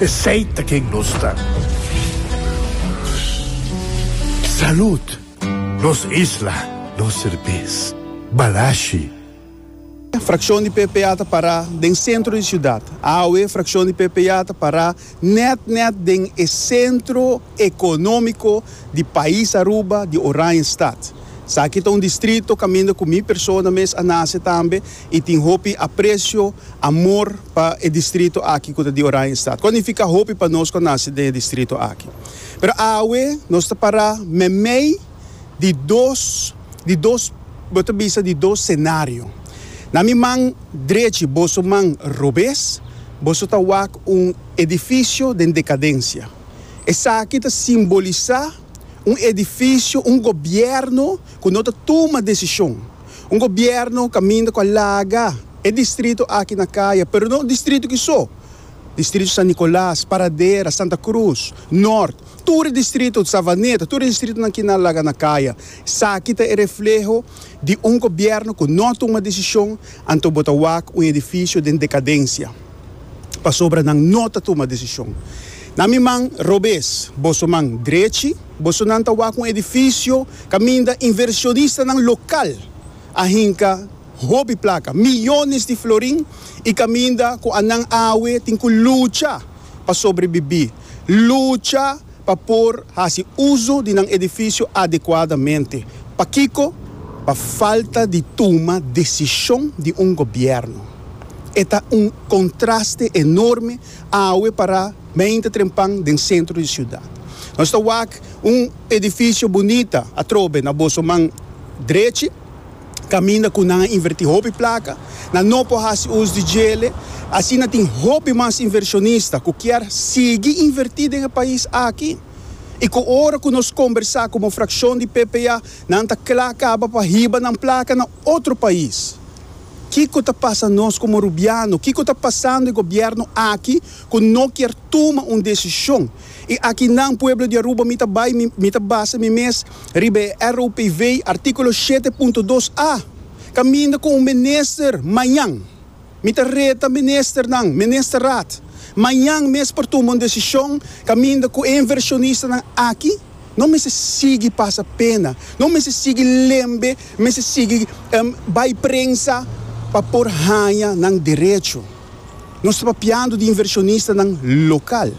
Esey ta ken nos ta. Salud! Nos isla, nos serbes. Balashi. Fraccion di ppa ta para den centro di ciudad. Awe fraccion di ppa ta para net net den e centro economico di pais Aruba, di Oranjestad. Esaki ta un distrito caminda cu mi persona mes a nace tambe y tin hopi aprecio, amor pa e distrito aki cu ta di Oranjestad. Cu a nifica hopi pa nos cu a naci den e distrito aki. Pero awe nos ta para meimei di dos, di dos, bo ta bisa di dos scenario. Na mi man drechi, boso man robes, boso ta wak un edificio den decadencia. Esaki ta simbolisa un edificio, un gobierno, ku no ta tuma desishon. Un gobièrnu kaminda ku a laga e distrito aki na kaya, pero no un distrito ki so, distrito San Nicolas, Paradera, Santa Cruz, Nort, tur e distrito Savaneta, tur e distritonan kina a laga na kaya. Esaki ta e refleho di un gobièrnu ku no a tuma desishon, anto bo ta wak un edifisio den dekadensia pasobra nan no ta tuma desishon. Na mi man robes, boso man drechi. Bosonan ta wak un edifisio kaminda invershonistanan lokal a hinka hopi plaka, miyones di florin, i kaminda ku anan awe tin ku lucha pa sobrebibí, lucha pa por hasi uso di nan edifisio adekuadamente. Pakiko? Pa falta di tuma desishon di un gobièrnu. E ta un kontraste enorme Awe para beinti trempan den sentro di siudat. Nos ta wak un edifisio bunita atrobe na boso man drechi, kaminda ku nan a invertí hopi plaka. Nan no por hasi us di djele. Asina tin hopi mas inversionista ku kier sigui invertí den e pais aki. I ku ora ku nos kombersá komo frakshon di PPA nan ta kla kaba pa hiba nan plaka na. Otro pais. Kiko ta pasa nos komo rubiano? Kiko ta pasando e gobièrnu aki ku no kier tuma un desishon? I aki nan, pueblo di Aruba, mi ta bai, mi ta basa mi mes riba e RUPV, artíkulo shete punto dos a, kaminda ku un minister mañan. Mi ta reta ministernan, Ministerraad, mañan mes por tuma un desishon kaminda ku e invershonistanan aki no mester sigui pasa pena, no mester sigui lembe, mester sigui bai prensa pa por haña nan derecho. Nos ta papiando di invershonistanan lokal.